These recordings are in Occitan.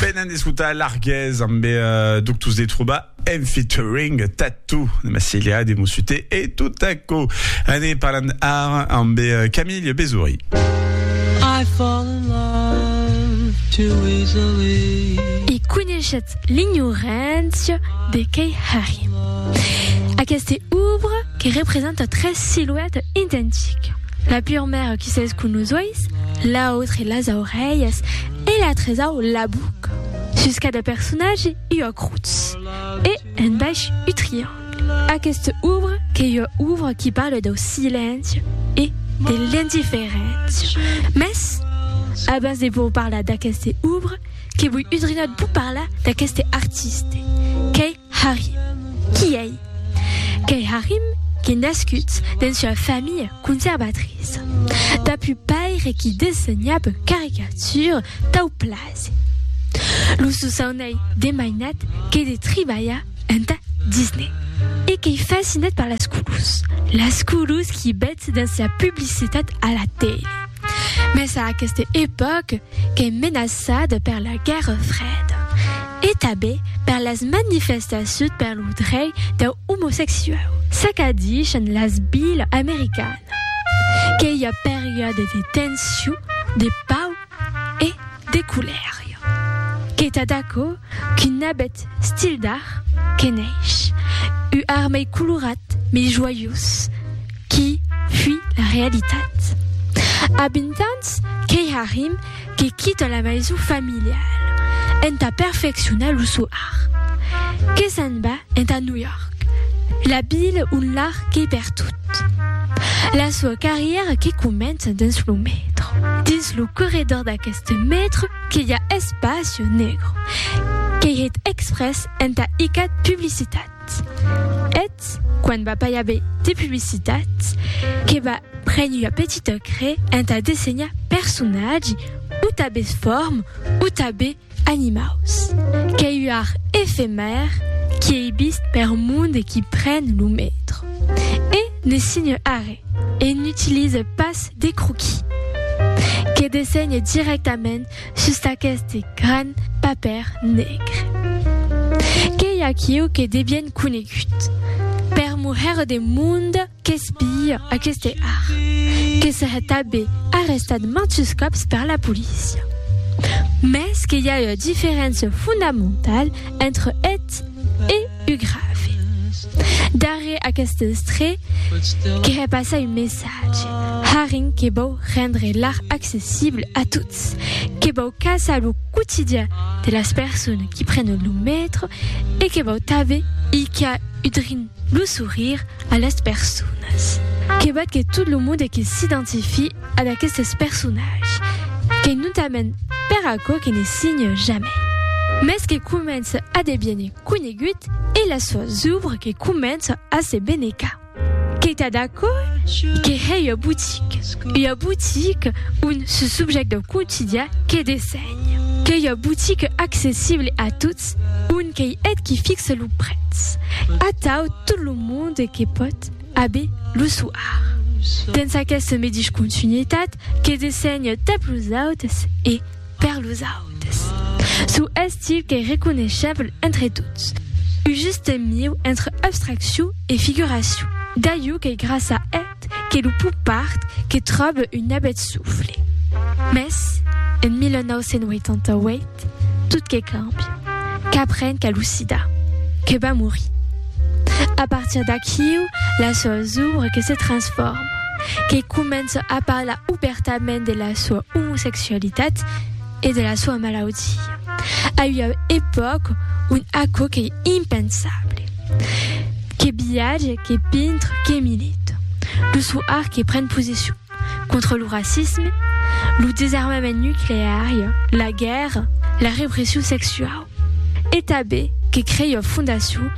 Venen d'escutar Larguez amb eh, Doctors de Trobar en featuring Tattoo de Massilia de Mossute e tot aquò. Ane parlant ara amb eh, Camille Besouri. I fall in love too easily. E coneishetz l'ignorància de Kei Hari. Aquesta obra que representa tres siluetas identiques. La purmèra qui s'es con los ois, l'autre las aurelhas e la tresau la buc sus cada personatge ua crotz e en baish u triangle. Aquesta obra qu'ei ua obra qui parle dau silenci e de l'indiferéncia. Mès abans de vos parlar d'aqueste obra que voi udrinat vos parlar d'aqueste artiste qu'ei Harry. Qui ei? Qu'ei Harry qu'ei nascut dens ua familha conservatriça. Dab un paire qui dessenhab caricatures tau plase. Lo sosaun ei de mainat que de tribalhar entà Disney. E qu'ei fascinat per las colors. Las colors qui betz dens la publicitat a la tele. Mes a aqueste epòc qu'ei menaçada per la Guèrra Freda e tabé per las manifestaciut per lo drei deu omosexuau, ça qu'a dichan las Bill americana qu'ei ua periòde de tension, de pau e. De culèria. Qu'ei tad aquò qu'un abet stil d'art que neish, u art mei colorat, mei joiós, qui fui la realitat. A vint ans qu'ei Harim que quita la maison familiale entà perfeccionar lo sò art, que s'en va entà New York, la vila ont l'art qu'ei per tot. La soa carrièra que comença dins lo metro. tot lo corredor d'aqueste mètre que i a espacio negro, qu'ei hèt exprès entà icat publicitat. Eth, quan va pas i aver de publicitat, que va prene ua petita crè entà dessenhar personatge, o tabes form, o tabes Animaus. Qu'ei ua efemèr qui ei vist per mond e qui pren lo metro. E ne signe arre e n'utilise pas de croquis. Que dessenhe dirèctament sus d'aqueste gran papèr negre. Qu'ei aquiu que devien conegut per morrer de mond. Qu'es pilha aqueste ar, que serè tabé arrestat mantus còps per la polícia. Mès que i a ua diferéncia fondamentala entre eth e u grave. Darrèr aqueste estré, que hè passar un messatge, arren que vòu rendre l'ar accessible a tots, que vòu caçar lo quotidian de las persones qui prenen lo metro e que vòu tabé i qu'a udrin lo sourire A las personas. Que val que tot lo monde que s'identifie a d'aquestes personatges, qu'ei notament per aquò que ne signe jamai, mès que comença a deviene conegut e las soas ouvres que comença a se benecar. Qu'ei tad aquò que hè ua boutique, ua boutique ont ce subjècte quotidià que dessenhe, qu'ei ua boutique accessible a tots, Un qu'ei eth qui fixe lo prètz. Atau tot lo monde que pòt aver lo soar. Dens aqueste medish continuitat que dessenhe tap los autes e per los autes. Sou estil qu'ei reconeishable entre tots. Un juste mieu entre abstraccion e figuracion. D'aiu qu'ei gràcia a. Ait que lo popard que tròbe un nabet sufle. Mès, en 1988, tot que càmbia. Qu'apren qu'a lo sida. Que va morir. A partir d'aquiu, la soa zòbre que se transfòrma. Que comença a parlar obèrtament de la soa omosexualitat. e de la soa malaudia. A ua epòca ont aquò qu'ei impensable. Que viatge, que pintre, que milita. Lo sò art que pren posicion contra lo racisme, lo desarmament nucleari, la guèrra, la repression sexuau. e tanben que crei ua fondacion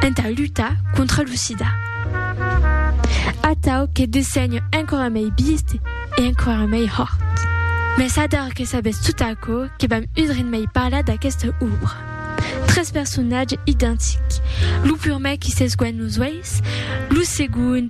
entà lutar contra lo sida. Atau que dessenho enquara mei bist e enquara mei hòrt. Mès ador que sabètz tot aquò que vam udrin mei parlar d'aquesta òbra. Tres personatges identics, lo purmèr qui s'esguènh los uèis, lo segond,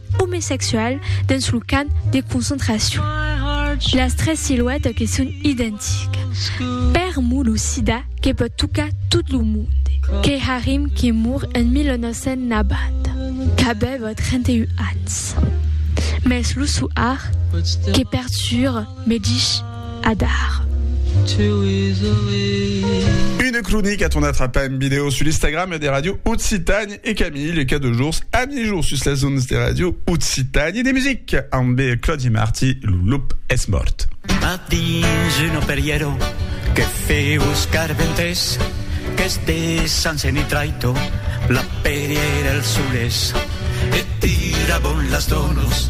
omesexual dens lo camp de concentracion. Las tres siluetas que son identicas. Per mo lo sida que pòt tocar tot lo monde. Key Harim que mor en 1990, qu'avèva 31 ans. Mès lo soar que perturba me dich adar. Une cronica ton atrapa en video sul Instagram de Radio Occitània. E Camille e cada jours a mijor sus las ondes de Radio Occitània de Music amb Claudi Marti, lo lop es mòrt. A dins un operièro que feu os carventers qu'es de San Senitraito la pèrièr el solés e tira bon las donos.